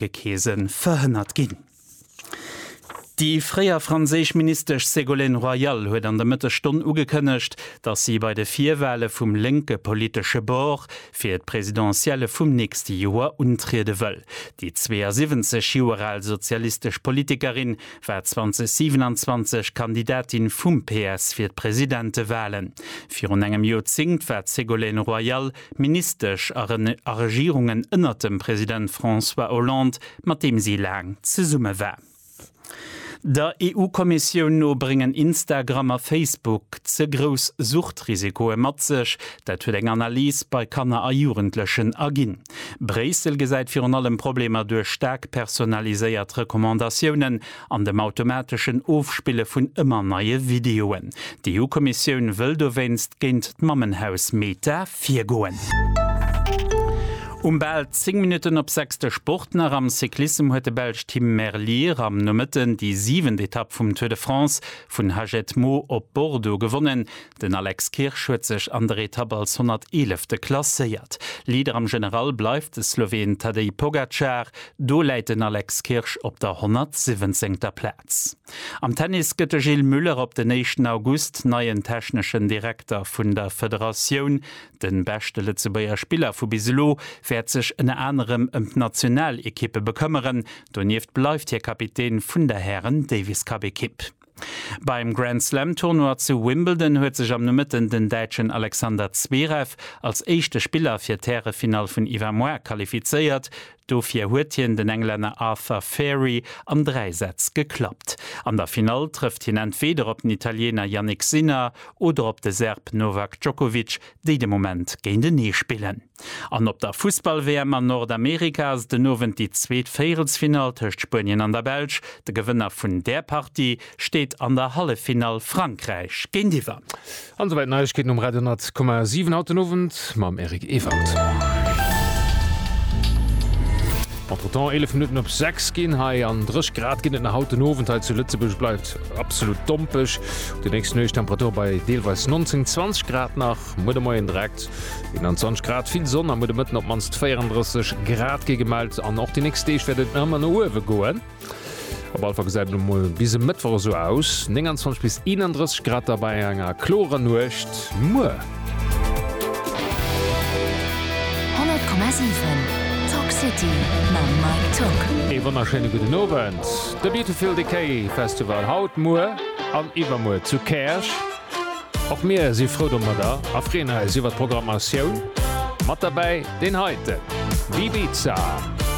Gekeesen verhënnert ginn. Déi fréier franséisch Ministesch Ségolène Royal huet an der Mëttesstonn ugekënnegt, datt si bei de Virwale vum lénke politesche Bord fir d'Presidentielle vum nächste Joer untriede wëll. Déi 72 Joer al sozialistesch Politikerin war 2027 Kandidatin vum PS fir d'Presidentewalen. Virun engem Joerzéngt war d'Ségolène Royal Ministesch a Regierungen ënnert dem President François Hollande, mat deem si laang zesumme war. Der EU-Kommissioun no bréngen Instagram a Facebook ze grouss Suchtrisikoe mat sech. Dat huet eng Analys bei Kanner a Jugendlechen erginn. Bréissel gesäit virun allem Problemer duerch staark personaliséiert Recommandatiounen an dem automateschen Ofspille vun ëmmer neie Videoen. D'EU-Kommissioun wëll dowéinst géint d'Mammenhaus Meta virgoen. Um bal 10 Minutten op 6 de Sport nach, Am Cyclissem huet de Belsch Tim Merlier am Nomëtten déi siwent Etapp vum Tour de France vun Hagetmau op Bordeaux gewonnen. Den Alex Kirsch huet sech an der Etapp als 111. klasséiert. Leader am General bleift de Sloween Tadej Pogacar, do läit den Alex Kirsch op der 117. Plaz. Am Tennis gëtt de Gilles Muller op den éischten August neien techneschen Direkter vun der Federatioun. De beschte Lëtzebuerger Spiller vu bis elo wäert sech ënner anerem ëm d'Nationalekippe bekëmmeren. Donieft bleift hie Kapitän vun der Hären-Davis-Cup-Ekipp. Beim Grand Slam Tournoi zu Wimbledon huet sech am Nomëtten den Däitschen Alexander Zverev als éischte Spiller fir d'Härefinall vun Iwwermoar qualifizéiert. Dofir huet hien den Englänner Arthur Fari an 3 Sätz geklappt. An der Finall trëfft hien entweeder op den Italiener Jannik Sinner oder op de Serb Novak Djokovic, déi de Moment géintenee spillen. An op der Fussball-WM an Nordamerika ass et den Owend déi zweet Véierelsfinall tëscht Spuenien an der Belsch. De Gewënner vun där Partie steet an der Halleffinall Frankräich géintiwwer. An esouwäit d'Neiegkeeten um Radio 100,7 haut den Owend mam Eric Ewald. Entretemps 11 Minutten op 6 ginn hei an 3 Grad ginn et nach haut den Owend hei zu Lëtzebuerg bleift absolut dompech. Op de nächsten Nuecht Temperature bei deelweis 19, 20 Grad nach. Muer de Moien direkt 21 Grad, vill Sonn a muer de Mëtten op d'mannst 34 Grad gi gemellt. An och déi nächst Deeg wäert et ëmmer no uewe goen. Op alle Fall gesäit et emol bis e Mëttwoch esou aus, 29 bis 31 Grad da bei enger klorer Nuecht. Muer. 100,7 Talk City mam Mike Tock. Ee wonnerschéine gudden Owend. De Beautiful Decay Festival haut, muer an iwwermuer zu Käerch. Och mir si frou domadder a freeën eis iwwer d'Programmatioun. Mat derbäi deen heiten Bibiza.